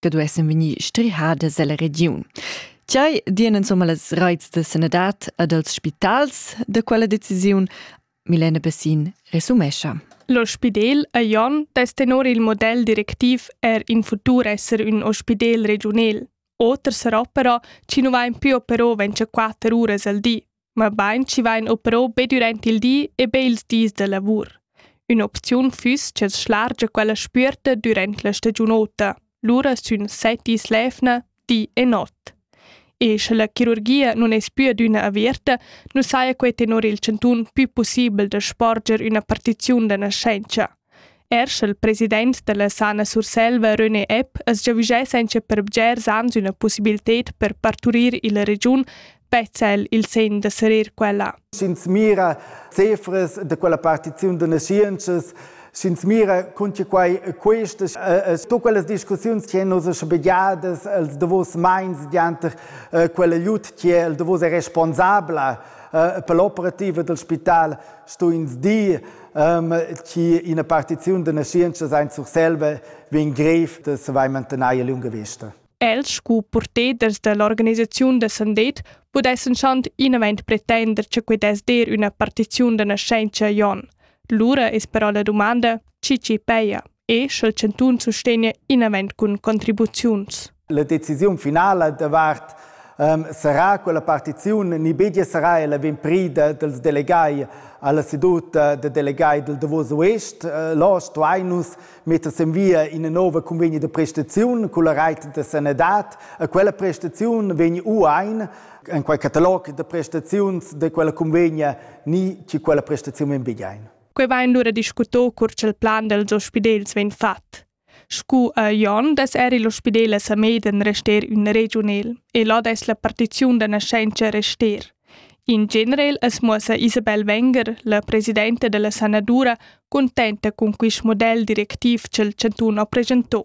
che duessen vegnir strihades ella regiun. Tgei dien insomma las reits de sanadad ad els spitals de quella decisiun? Milena Bessin resumescha. Lo Spidel a Jon dess tenor il model directiv er in futur esser un ospidel regional. Oter sarà però, ci nu va in più però 24 uras al di. mabain chi vain opero be dürant il di e be ils dis da lavur. Ün'opziun füss ch'els schlargia quella spüerta dürant la stagiunota, lura sün set dis l'eivna, di e not. E sche la chirurgia nun es più adüna averta, nu saja quai tenor il chantun pü pussibel da sporger üna partiziun da naschentscha, Er sch'el president dalla Sana Surselva René Epp as giavüschess auncha per bgers ans üna pussibilted per parturir illa regiun, vezza el il segn da serir quella. Sch'ins mira cifras da quella partiziun da naschientschas, sch'ins mira cun che quai questas, äh, tut quelles discussiuns che nos schabegiadas els davos meins dianter äh, quella jut che el davos è responsabla äh, per l'operativa del spital, sto ins dir um, chi ina partiziun da naschientscha sein Surselva vegn grev da saver mantener lunga vista. Els scu porteders dall'organisaziun da Sandet pudessen schant inament pretender che quei dess dir üna partiziun da nascenza Jon. Lura es però la domanda, chi ci peia. e sch'el chantun sustegna inavant cun contribuziuns. La decisiun finala davart um, sarà quella partiziun ni begia sarà ella vegn prida dels delegai alla seduta de delegai del Davos Oest. Eh, là stuai nus metter en via in nova convegno de prestaziun con la reit de sanadad. E quella prestaziun vegn uain en quei catalog de prestaziuns de quella convegna ni ci quella prestaziun en begiain. Quei vain lura discuto cur ch'el plan dels ospidels vegn fat. Scu a Jon des eri l'ospidel a Sameden rester ün regiunel e là des la partiziun da nascenza rester. In generel es muossa Isabel Wenger, la presidenta della sanadura, contenta con quist model directiv ch'el chantun ha presentò.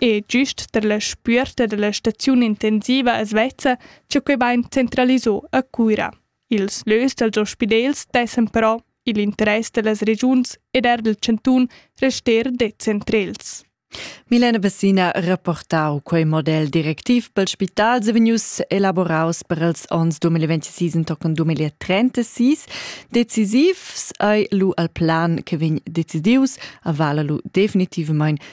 E gist tar la spüerta da la staziun intensiva as vezza cha quai vain centralisà a Cuira. Ils lös dals ospidels dessan però i'l interess da las regiuns ed eir dal chantun rester decentrels. Milena Bessina reportau quei model directiv pel spital se vegnius elaboraus per els ons 2026 entochen 2036. Decisiv ei lu al plan che vegn decidius, avala lu definitivamain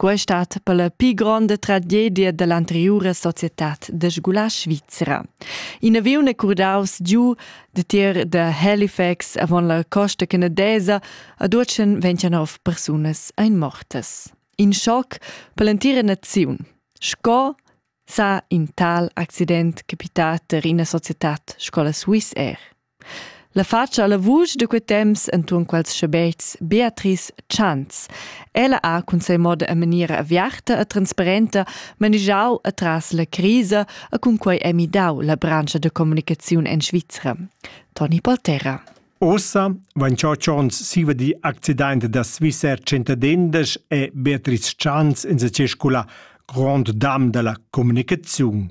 Quai stat per la pli gronda tragedia dall'anteriura societad da scola svizra. In aviun è curdaus giu de tier da Halifax avon la costa canadesa ad Urcen 29 persunas ein mortas. In schoc per l'entira naziun. Sco sa in tal accident capitat er ina societad scola Swiss Air. La fatscha alla vusch da quei temps entuorn quels schabetgs Beatrice Chantz. Ella ha cun sei moda e maniera aviarta e transparenta manigiau atras la crisa e cun quei è midau la branscha da communicaziun en Svizra. Toni Polterra. Ossa vain ciò chons siva di accident da Swissair centadendas e Beatrice Chans in sa circula Grand Dam da la comunicaziun.